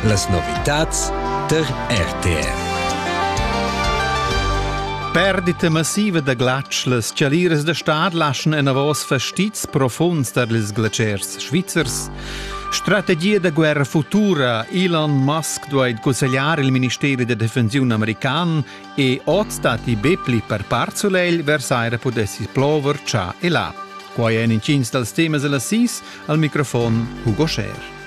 Las novitads tar RTR. Perdita massiva da glatsch, las chaliras da stad laschan enavos fastizs profunds tar ils glatschers svizzers. Strategia da guerra futura Elon Musk duai cussegliar il ministeri da defensiun american e oz stati be pli per part sulegl vers aira pudessi plover cià e là. Quai èn intgins dals temas da la SIS al microfon Hugo Scher.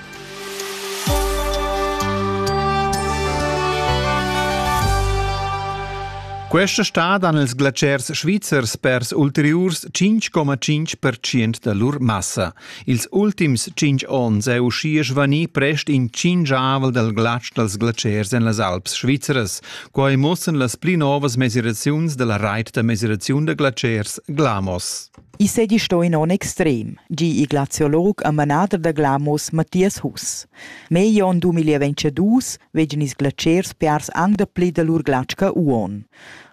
Questa stad han ils glaciers svizzers pers ulteriurs 5,5% da lur massa. Ils ultims 5 onns è uschia svanì prest in cingiavel dal glatsch dals glaciers en las Alps svizzeras. Quai mussan las pli novas mesiraziuns da la rait da mesiraziun da glaciers Glamos. I seigi sto in onn extrem, gi il glaziolog e manader da Glamos Mathias Huss. Meglio onn 2022 vegin ils glatschers piars anc dapli da lur glatscha uon.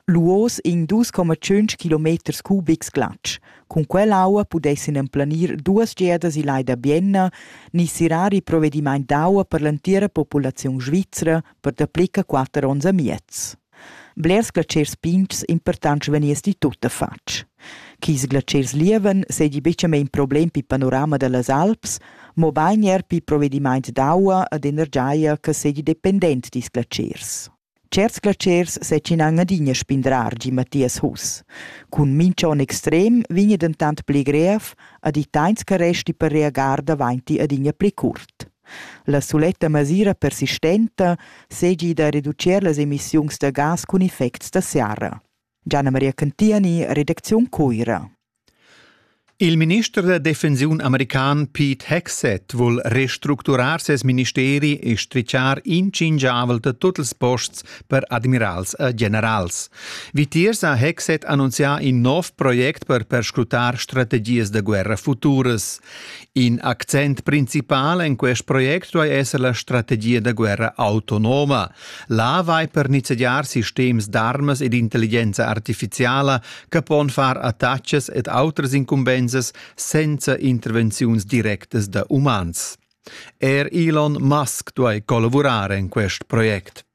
Luos in 2,5 km cubics glatsch. Cun quell'aua pudessin emplanir duas geadas il lai da Bienna ni sirar il provedimaint d'aua per l'entira populaziun svizra per dapli che quatter onns e miez. Blers glatschers pigns impurtants vegniss ti tuttafatg. Ch'ils glatschers lievan seigi bucamein problem pil panorama dallas alps, mobein era pil provedimaint d'aua ed energia che seigi dependent dils glatschers. Certs glatschers setschinan adina spindrar gi Mathias Huss. Cun mincha onn extrem vegni dentant pli grev ed i teins che resti per reagar davainti adina pli curt. La suletta masira persistenta seigi da reducir las emissiuns da gas cun effects da serra. Gianna Maria Cantiani, redacziun Cuira. Il minister da defensiun american Pete Hegseth vul restructurar ses ministeri e strichar inchingiavel da tut ils posts per admirals e generals. Vitiers ha Hegseth annunzià in nov project per perscrutar strategias da guerra futuras. In accent principal en quest project duai esser la strategia da guerra autonoma. Là vai per nizzegiar sistems d'armas ed intelligenza artifiziala che pon far attacks ed autras incumbensas senza intervenziuns directas da umans. Er Elon Musk duai collavurar en quest project.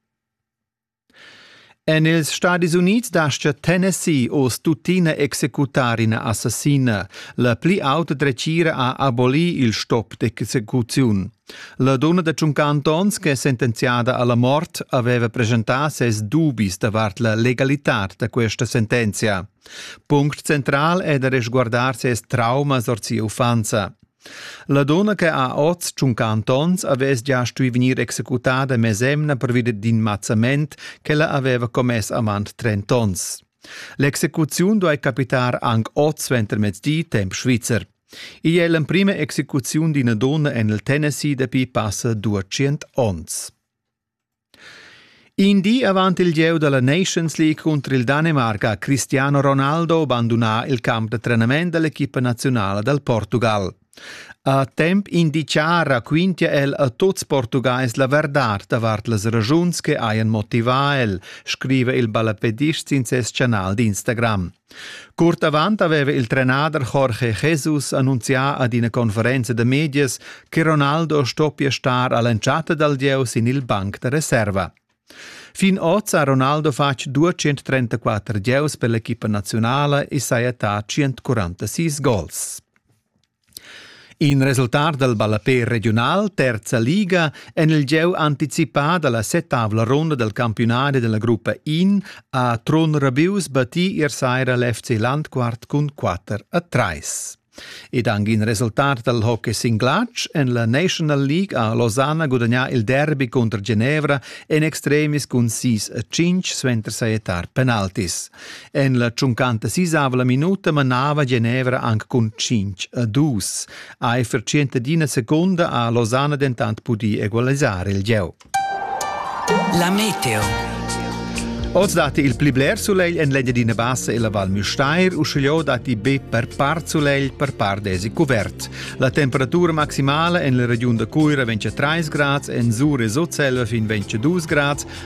En ils Stadis Unids dastga Tennessee oz tuttina executar ina assassina. La pli auta dretgira ha abolì il stop d'execuziun. La donna da tschunca Antons, che è sentenziada alla mort, aveva presentà ses dubis davart la legalità da questa sentenzia. Punct central è da resguardar ses traumas or sia uffanza. La donna che ha oz tschunca antons havess gia stui vegnir executada mesemna pervi d'in mazzament ch'ella haveva commess avant trent'onns. L'execuziun duai capitar anc oz suentermezdi temp svizzer. Igl è l'emprima execuziun d'ina donna en il Tennessee dapi passa duatschient onns. In di avant il gieu da la Nations League cunter il Danemarc ha Cristiano Ronaldo bandunà il camp da trenament da l'equipa naziunala dal Portugal. A temp indiciar raquintia el a tuts Portugais la verdad davart las ragiuns che hajan motivà el, scriva il ballapedist sin ses chanal d'Instagram. Curt avant aveva il trenader Jorge Jesus annunzià ad ina conferenza da medias che Ronaldo stoppia star a l'entschatta dal gieu sin il banc da reserva. Fin oz ha Ronaldo fatg 234 gieus per l'equipa nazionala e saja attà 146 gols. In resultat dal ballapè regiunal terza liga en il gieu anticipà da la settavla ronda dal campiunadi da la gruppa In ha Trun Rabius battì ier saira l'FC Landquart cun 4 a 3. Ed anche in resultat dal hockey singlatsch en la National League ha Losanna gudagnà il derby contro Genevra en extremis cun 6 a 5 suenter sajettar penaltis. En la tschuncanta sisava la minuta manava Genevra anc cun cinc a dus. Eifer tschient d'ina seconda ha Losana dentant pudì egualisar il gieu. La meteo. Oz datti il pli bler sulegl en l'Engiadina Bassa e la Val Müstair, uschigliò datti be per part sulegl, per part desi cuvert. La temperatura maximala en la regiun da Cuira ventg 3 grads, en Sur e Sutselva fin 22 grads,